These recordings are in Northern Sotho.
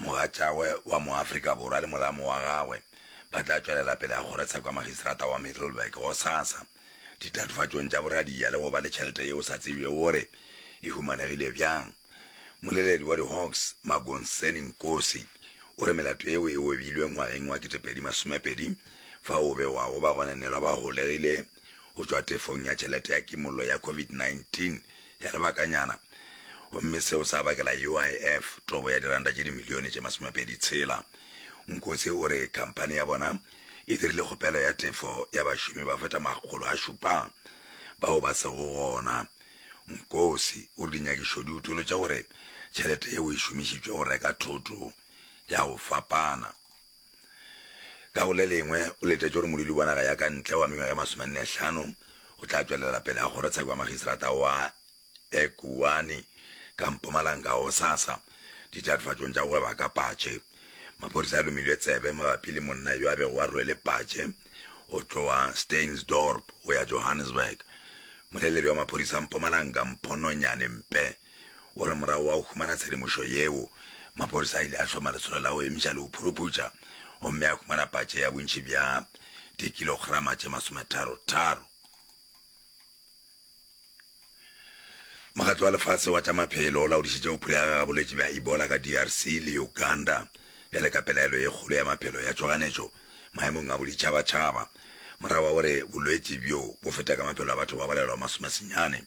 Mogatšagwe wa Moafrika Borwa le molamo wa gagwe ba tla tšwelela pele ga go reetsa kwa Magistrata wa Middelburg gosasa ditatofatšong tša boradia le go ba le tšhelete yeo sa tsebjego gore e humanegile bjang. Moleledi wa di-Hawks, Magonseni Nkosi, o re melato yeo e obilwe ngwageng wa 2020 fa o be wa go ba gona nelwa ba golegile go tšwa tefong ya tšhelete ya kimollo ya COVID-19 ya lebakanyana gomme seo sa bakela UIF tobo ya diranta tše dimilione tše masomepedi tshela. Nkosi o re khamphani ya bona e dirile kgopelo ya tefo ya bašomi ba feta makgolo a šupa bao ba sego gona. Nkosi o re dinyakišo di utolotša gore tšhelete yeo e šomišitšwe go reka thoto ya go fapana. Ka go le lengwe, o letetše gore modudi wa naga ya ka ntle wa mengwaga e masomennehlano o tla tšwelela pele a kgorotsheko ya makgistrata wa Ekurhuleni ka Mpumalanga gosasa. Ditatofatšong tša go gweba ka patše, maphodisa a lomilwe tsebe mabapi le monna yo a bego a rwele patše go tloga Steynsdorp go ya Johannesburg. Moleledi wa maphodisa Mpumalanga, Mpho Nonyane Mpe, O re morago wa go humana tshedimošo yeo, maphodisa a ile a hloma lesolo la go emiša le go phuruputša gomme a humana patše ya bontši bja dikilograma tše masometharo-tharo. Mokgatlo wa Lefase wa tša Maphelo o laodišitše go phulega ga bolwetši bja Ebola ka DRC le Uganda bjale ka pelaelo ye kgolo ya maphelo ya tšhoganetšo maemong a boditšhabatšhaba morago ga gore bolwetši bjo bo feta ka maphelo a batho ba balelwa masomesenyane.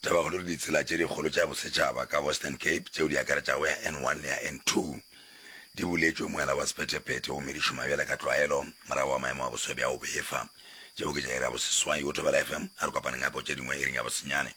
Taba kgolo ke ditsela tše dikgolo tša bosetšhaba ka Western Cape tšeo di akaretšago ya N1 le ya N2. Di buletšwe moela wa sephethephethe gomme di šoma bjale ka tlwaelo morago ga maemo a boswa bja go befa. Tšeo ke tša iri ya boseswai go Thobela FM. A re kopaneng gape go tše dingwe iring ya bosenyane.